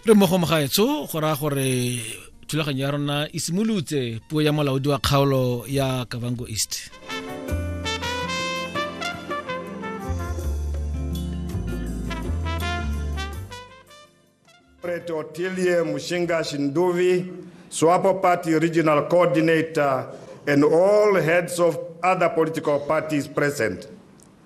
re mo go mogaetsho go raya gore thulaganyo ya rona e simolotse puo ya molaodi wa kgaolo ya kavango east Preto Tilie Mushinga Shinduvi, Swapo Party Regional Coordinator, and all heads of other political parties present.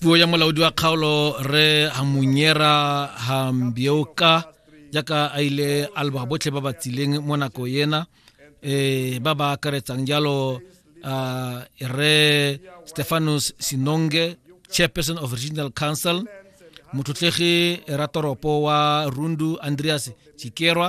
puo ya molaodi wa kgaolo re hamunyera hambioka jaaka a ile a leboga botlhe ba ba tsileng mo nako ena um ba ba akaretsang jalo uh, re stefanus sinonge chairperson of regional council mothotlegi ratoropo wa rundu andreas chikerwa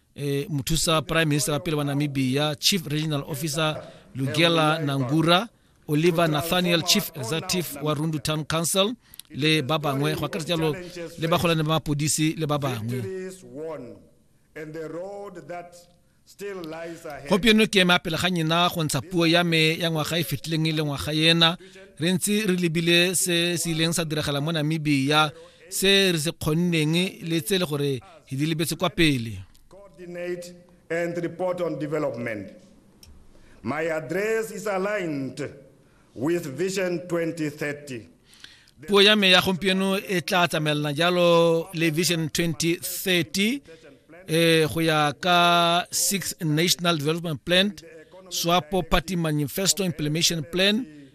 e, mothusa prime minister wa pele wa namibia chief regional officer lugela nangura oliver nathaniel chief executive wa rundu town council le ba bangwe go akaretsa jalo le bagolane ba mapodisi le ba bangwe gompieno ke eme apele ga nyena go ntsha puo ya me ya ngwaga e fetileng e le ngwaga ena re ntse re lebile se se ileng sa diragala mo namibia se re se kgonneng le tse le gore di lebetse kwa pele coordinate and report on development my address is aligned with vision 2030 puo ya me ya gompieno e tla tsamaelana jalo le vision 2030 eh go ya ka six national development plan swapo party manifesto implementation plan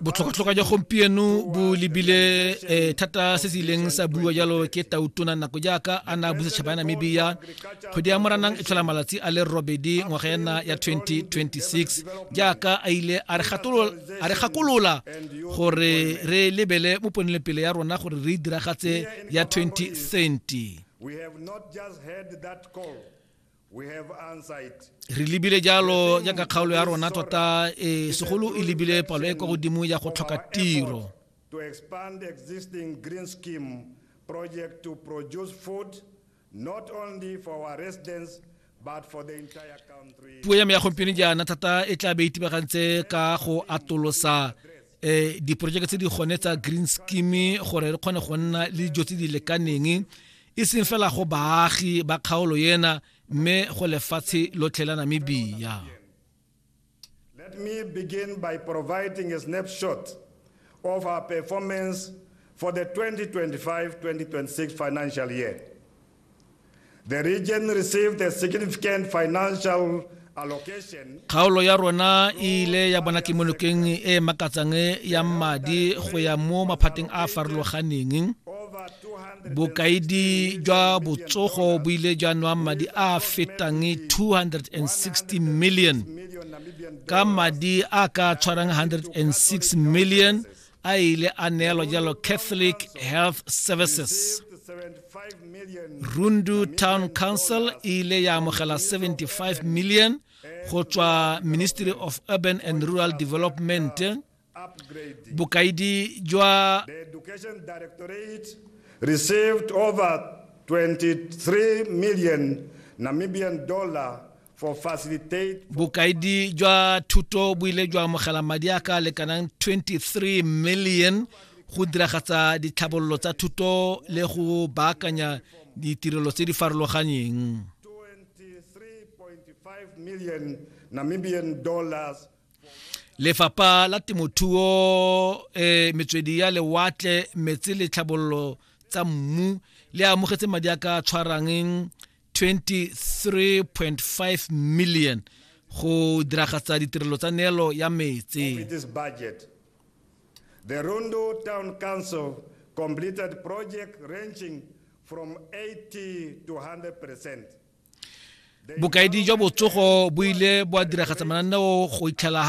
botlhokatlhoka jwa gompieno bo lebile eh, thata se se ileng sa bua jalo ke tautona nako jaaka a na busa tšhaba ya namibia kgwedi ya moranang e tlhola malatsi a le robedi ngwaga ena ya 2026 jaaka a ile a re gakolola gore re lebele mo ponelepele ya rona gore re diragatse ya 2030 re lebile jalo jaaka kgaolo ya rona tota e segolo e lebile palo e kwa godimo ya go tlhoka tiro to expand existing green scheme project to produce food not only for our residents but for the entire country puo ya me ya gompieno jaana thata e tla be itibagantse ka go atolosa eh diporojeke tse di gone tsa green scheme gore re kgone go nna le dijo tse di lekaneng e seng fela go baagi ba kgaolo ena mme go lefatshe lotlhe la namibia Let me begin by providing a snapshot of our performance for the 2025-2026 financial year. The region received a significant financial kgaolo ya rona e ile ya bona kemonokeng e e makatsang ya madi go ya mo maphateng a a farologaneng bokaedi jwa botsogo bo ile jwa nwang madi a a fetang 260 million ka madi a ka tshwarang 106 million a ile a neelwa jalo catholic health services rundu town council e ile ya amogela 75 million go tswa ministry of urban and rural development bokaedi jwa received over 23 million namibian dollar bokaedi jwa thuto bo ile jwa amogela madi a ka lekanang 23 million go diragatsa ditlhabololo tsa thuto le go baakanya ditirelo tse di farologaneng lefapha la temothuo eh, metswedi ya lewatle metsi le tlhabololo tsa mmu le amogetse madi a ka tshwarangeng 23.5 million go diragatsa ditirelo tsa neelo ya metse The Rundu Town Council completed project ranging from 80 to 100%. Bokaedi jwa botsogo bo ile bwa diragatsa mananeo go itlhela